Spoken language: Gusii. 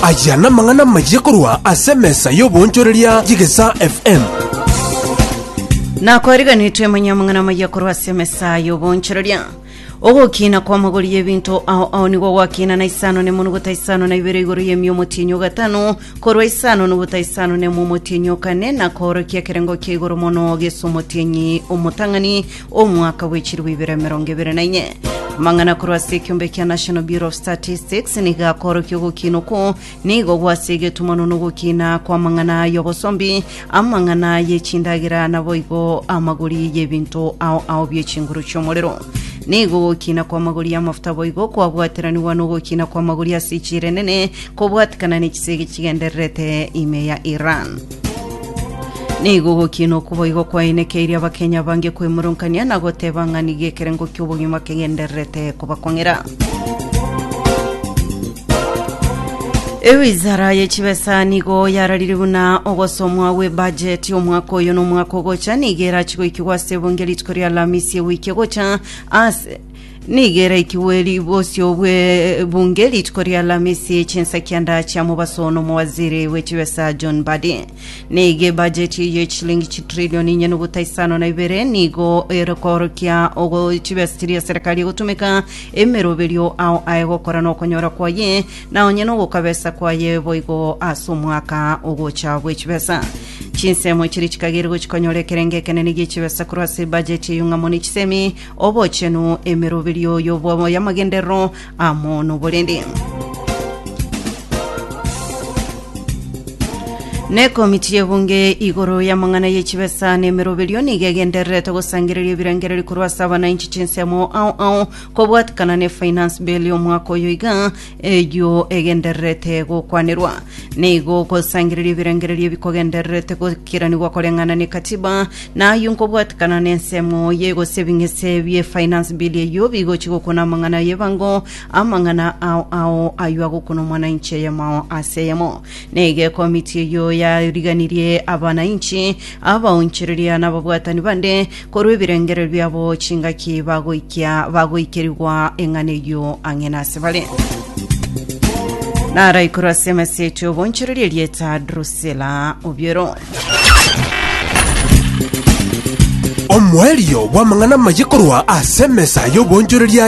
Aya namang'ana amayia korwa ase emesa y'oboonchoreria y'Egesaa FM. nakwariganetwe manya amang'ana amaya korwa ase emesa y'oboonchoreria ogokina kw'amagori y'ebinto ao ao nigo gwakina na isano nemo nogota isano na ibere igoro y'emia omotienyi ogatano korwa isano nogota isano nemo omotienyi okane na koorokia ekerengo kia igoro mono gesa omotienyi omotang'ani Omwaka bwe chirwa ibere emerongo ebere na inye. Amang'ana korwa ase ekiombe kia National Bureau of Statistics nigo akorokia ogokina okwo nigo gwase egetumano na ogokina kw'amang'ana y'obosombi, amang'ana y'echindagera naboigo amagori y'ebinto ao ao bi'echinguru chi'omorero. Nigo ogokina kw'amagori y'amafuta boigo kwabwateranigwa na ogokina kw'amagori ase echiira enene kobwatikana n'echisegi chigendererete ime ya Iran. Nigo ogokina okuboigo kwainekeirie abakenya bange kwemurungania na goteba ng'a nigo ekerengo ki'obogima kegendererete kobakong'era. Ewizara ye chibesa nigo yararire buna ogosomwa gw'ebajeti omwaka oyo na omwaka ogocha nigo erachi goikigwa ase ebunge rituko ria Alamisi ewiki egocha ase Nigo eraikigwe eri bosio bwe bunge rituko ri'Alamisi chinsa kia ndacha mobaso n'omowaziri bwe chibesa John Badi. Nigo ebajeti eye ye chilingi chitrilioni inye nobuta isano na ibere nigo erekorokia ogo chibesa chiria serikali egotumeka emeroberio ao aye gokora nokonyora kwaye na onye nogokabesa kwaye boigo ase omwaka ogocha bwe chibesa. Chinsemo chiria chikagere gochikonyora ekerengo ekenene gie chibesa korwa ase ebajeti eyo ng'amo ne chisemi Obochenu, emeroberio y'obomo y'amagenderero amo noborende. Nekomiti y'ebunge igoro y'amang'ana y'echibesa nemeroberio nigo egendererete gosangereria ebirengererio korwa ase abananchi chinsemo ao ao kobwatikana ne finance bill y'omwaka oyo iga Eyio egendererete gokwanerwa nigo gosangereria ebirengererio ebikogendererete gokiranigwa koreng'ana n'ekatiba na ayio nkobwatekana n'ensemo ye gose ebing'ese bie finance bill eyio bigochi gokona amang'ana y'ebango amang'ana ao ao ayio agokona omwanainchi eyemo ase eyemo nigo ekomiti eyio yariganirie abanainchi abaonchereria na ababwatani bande Korwa ebirengererio biabo chingaki bagoikia bagoikerigwa eng'ana eyio ang'e nasebare. Naraikorwa ase emesete obonchereri erieta Drusila obiero. Omoerio bw'amang'ana amaye korwa ase emesa y'obonchoreria